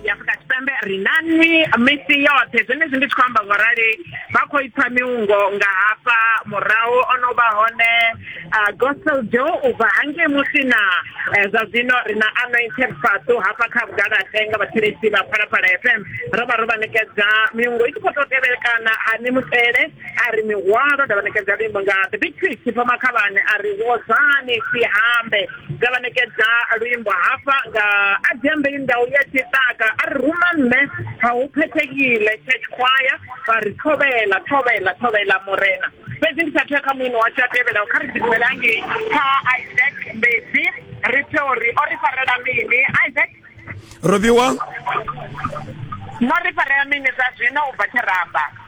ya afrika tshipembe ri na nwi misi yoṱhe zwenezwi ndi tshi khou amba ngo rali vha khou ipfa miungo nga hafha murahu o no vha hone gospel jo u bva hangei musina eh, zwa zwino ri na anointed fatu hafha kha vhugalaxe nga vhathetshelesi vha phalaphala fm ro vha ro vha ṋekedza miungo i tshi khou tou tevhelekana hani mutele a ri mihwalo nda vha ṋekedza luimbo nga the big fish pfa makhavhane a ri wozani sihambe nda vha ṋekedza luimbo hafha nga a dzembe ndau ya tshiṱaka a ri ruma nṋe ha u phethekile church choir vha ri thovhela thovhela thovhela murena fhedzi ndi sathu ya kha muino washu a tevhelaho kha ri ḓidumelangei kha isaac mbedzi ri pfe uri o ri farela mini isaac Robiwa No ri farea mini zwa zwino u bva Tshiramba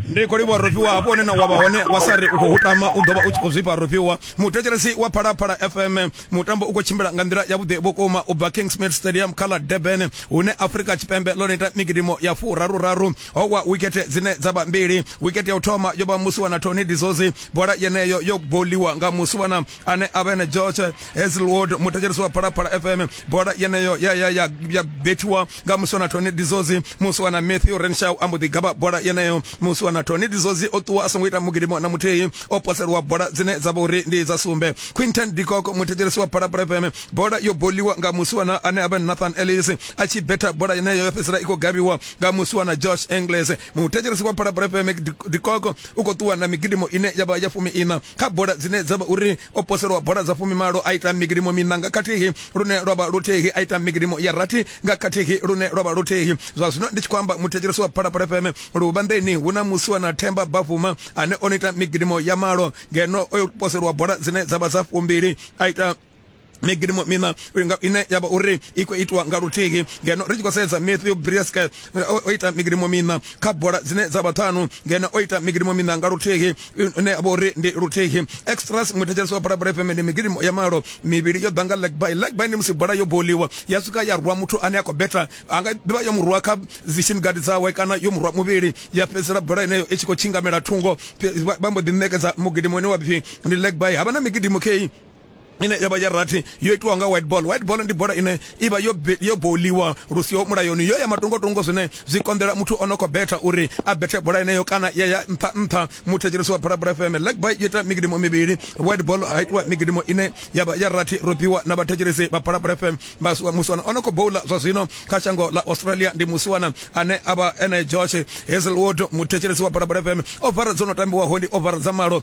ndi khou livhuwa rofiwa hafho hone na wavha hone wa sa ri u khou tama u ḓovha u tshi khou zwifha rofiwa muthetshelesi wa phalaphala fm mutambo u khou tshimbila nga nḓila yavhuḓi vhukuma u bva kingsmid stadium kha ḽa durban hune afrika tshipembe ḽo neta migidimo ya furaruraru ho wa wikete dzine dza vha mbili wikete ya u thoma yo vha musiwana tony dizozi bola yeneyo yo boliwa nga musiwana ane a vha ene george hazelwood muthetshelesi wa phalaphala fm bola yeneyo ya, ya, ya, ya bethiwa nga musi wana tony dizozi musi wana matthew renshaw a mbo ḓi gaba bola yeneyo musi wana tony dizozi o ṱuwa a songo ita mugidimo na muthihi o poseliwa bola dzine dza vha uri ndi dza sumbe quinton dikoko muthetshelesi wa phalaphala fm bola yo boliwa nga musi wana ane a vha nathan ellis a tshi betha bola yeneyo yo fhedzisela i khou gabiwa nga musi wana josh engles muthetshelesi wa phalaphala fm dikoko u khou ṱuwa na migidimo ine ya vha ya fumi ina kha bola dzine dza vha uri o poselwa bola dza fumimalo a ita migidimo miṋa nga khathihi lune lwa vha luthihi a ita migidimo ya rathi nga khathihi lune lwa vha luthihi zwa zwino ndi tshi khou amba muthetshelesi wa phalaphala fm luvhanḓeni hu na musiwa na themba bafuma ane o no ita migidimo ya malo ngeno o poselwa bola dzine dza vha dza fumbili a ita migidimo mina ine ya vha uri i khou itiwa nga luthihi ngeno ri tshi khou sedza matthew brieske eh, o ita migidimo mina kha bola dzine dza vha ṱhanu ngeno o ita migidimo mina nga luthihi ine ya vha uri ndi luthihi extras muthetshelesi wa bulabola fm ndi migidimo ya malo mivhili yo ḓa nga legby legby ndi musi bola yo boliwa ya swika ya rwa muthu ane a khou beta a nga ḓivha yo murwa kha zishin gadi dzawe kana yo murwa muvhili ya fhedzisela bola ineyo i tshi khou tshingamela thungo vha mbo ḓi ṋekedza mugidimo ine wa pfhi ndi legby havha na migidimo kei ine ya vha ya rathi yo itiwa nga white ball white ball ndi bola ine i vha yo yo boliwa lu siho mulayoni yo ya matungotungo zwine zwi konḓela muthu o no khou betha uri a bethe bola ineyo kana ya ya nṱha nṱha muthetshelesi wa Bula Bula FM leg by yo ita migidimo mivhili white ball ha itiwa migidimo ine ya vha ya rathi robiwa na vhathetshelesi vha Bula Bula FM vha musiwana o no khou bowla zwa zwino kha shango ḽa Australia ndi musiwana ane a vha ene Josh Hazelwood muthetshelesi wa Bula Bula FM ovara dzo no tambiwaho ndi ovara dza malo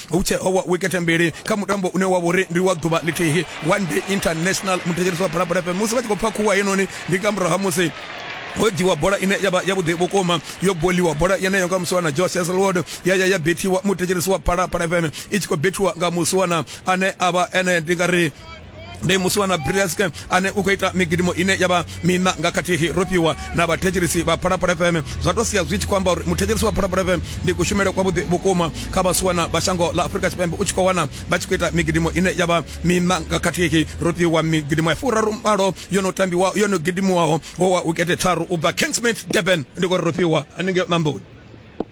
hu tshe owa wikete mbili kha mutambo une wa vhori ndi wa ḓuvha ḽithihi one day international muthetshelisi wa balapala fm musi vha tshi khou pfa khuwa heinoni ndi nga murahu ha musi ho dziwa bola ine ya vha yavhuḓi vhukuma yo boliwa bola yeneyo nga musiwana joe seselwood ya ya ya bethiwa muthetshelisi wa balapala fm i tshi khou bethiwa nga musiwana ane a vha ene ndi nga ri ndi musi wa na brilliaske ane u khou ita migidimo ine ya vha mina nga khathihi ro fhiwa na vhathetshelisi vha phalaphala fm zwa to sia zwi tshi khou amba uri muthetshelisi wa phalaphala fm ndi kushumele kwavhuḓi vhukuma kha vhasiwana vha shango ḽa afurika tshipembe u tshi khou wana vha tshi khou ita migidimo ine ya vha mina nga khathihi ro fhiwa migidimo ya furaru mbalo yo no tambiwa yo no gidimiwaho ho wa ukete tharu u bva kingsmith durban ndi kho ri ro fhiwa haningei mamboni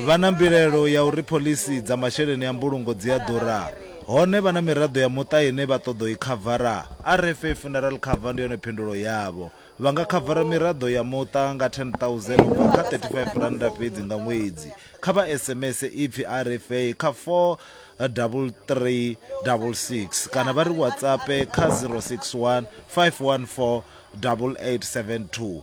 Vha na mbilaelo ya uri phoḽisi dza masheleni a mbulungo dzi a ḓura. Hone vha na miraḓo ya muṱa ine vha ṱoḓa u i khavara. RFA Funeral Cover ndi yone phindulo yavho. Vha nga khavara miraḓo ya muṱa nga R10,000 u bva kha R35 fhedzi nga ṅwedzi. Kha vha SMS ipfi RFA kha 43366 kana vha ri WhatsAppe kha 061 514 8872.